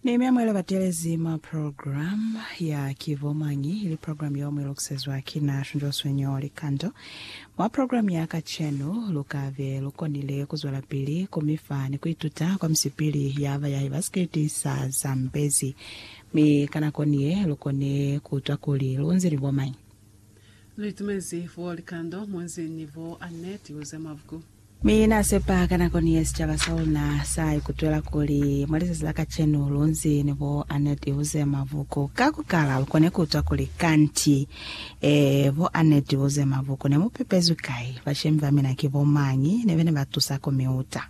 Nehemia mwela batelezi mwa program ya ki bo mañi ili program yeo mwi lokisezwa ki na Shunjoswe Nyo Likando. Mwa program ya kacenu lu ka be lu konile ku zwelapili ku mi fa ni ku ituta kwa misipili ya bayahi ba sikriti sa Zambezi. Mi ka nako ni ye lu kone ku utwa kuli lu nzi ni bo mañi. Lu itumezi bo Likando mu nzi ni bo Annette Uzemovuku. Mi Na sepa ka nako ni ye sicaba sa luna sa ikutwela kuli, mwa lizazi la kacenu, lunzi ni bo Annette Iwuze Mavuku. Ka ku kala, lu kone ku utwa kuli, Kanti, ee, bo Annette Iwuze Mavuku ne mu pepezwi kai? Bashemi ba mina ki bo mañi? Ne bene ba tusa ku mi uta.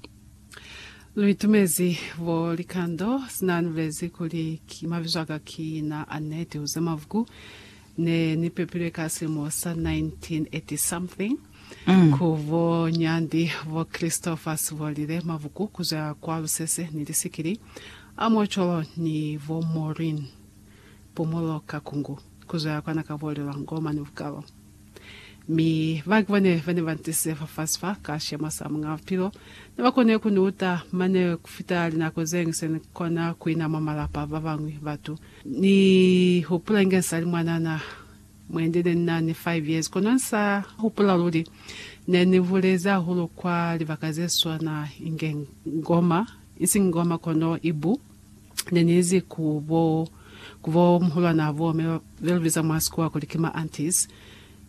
Lu itumezi bo Likando, sina ni bulezi kuli, Ki, mabizo aka ki na Annette Iwuze Mavuku. Ne ni pepilwe ka silimo sa 1980-something ku bo Nyandi, bo Christopher Sibolile, mabuku ku zwa kwa lusese ni lisikili, a mwa cwalo ni bo Maureen, Pumulo ka Kungu, ku zwa kwa na ka bolelwa, ngoma ni bukalo. Mi ba ki bone ba ne ba ntisize fafasi fa, ka sicema sa Muñ'a Bupilo. Ne ba kone ku ni uta, mane ku fita linako ze ñwi se ni kona ku ina mwa malapa a ba bañwi batu. Ni hupula inge nsali mwanana, muendele ni nani 5 years, kono nsa hupula luli ne ni bulezi hahulu kwa libaka ze swana inge Ngoma, ising Ngoma kono Ibu, ne ni izi ku bo ku bo muhulwanaa bo me be lu biza mwa sikuwa kuli ki ma aunties,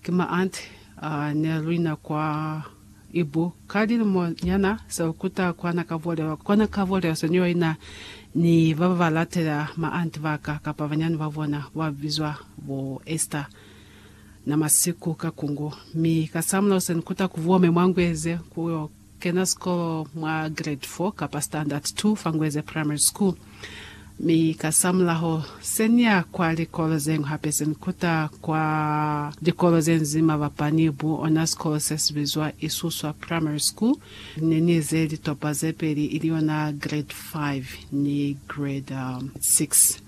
ki ma aunt, uh, ne lu ina kwa Ibu, ka lilimo nyana sa u kuta kwa na ka bolewa, kwa na ka bolewa senioi na ni ba ba ba latela ma anti ba ka, kapa banyani ba bona, ba bizwa bo Esther, na masiku ka kungu. Mi ka sa mulao se ni kuta ku bome mwa Ngweze ku yo kena sikolo mwa grade four kapa standard two fa Ngweze Primary School. Mi kasamulaho, se ni ya kwa likolo zeñwi hape se ni kuta kwa likolo ze nzima bapani bu ona sikolo se si bizwa Isuswa Primary School. Ne ni ize litopa ze peli, ili yona Grade Five ni Grade Six.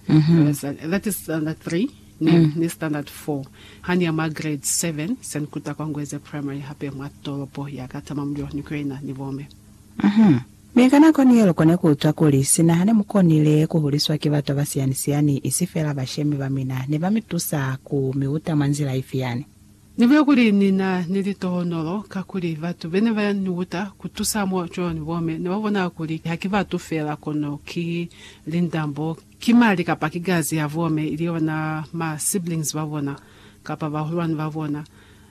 That is Standard Three ni, ni Standard Four. Ha ni ya mwa Grade Seven, se ni kuta kwa Ngweze Primary hape mwa tolopo ya ka Tamamulilo ni kuyo ina ni bo me. Mi ka nako ni yel'o kone kuutwa kuli, sina hane mukonile kuhuliswa ki batu abasiyani-siyani, isi feela bashemi bamina, ne bamitusa ku miuta mwa nzila ifi yani. Nibuya kuli nina ni litohonolo, kakuli batu bene ba niuta kutusa mwa cwalo ni bome nebabona kuli haki batu feela, kono ki lindambo. Ki mali kapa ki gazi ya bomme ili yona ma siblings ba bona kapa bahulwani ba bona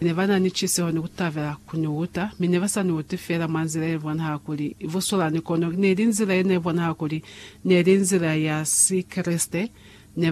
ne ba na ni ciseho ni ku tabela ku ni uta, mi ne ba sa ni uti fela mwa nzila ye bonahala kuli i busulani kono ne li nzila ye ne bonahala kuli ne li nzila ya Sikreste.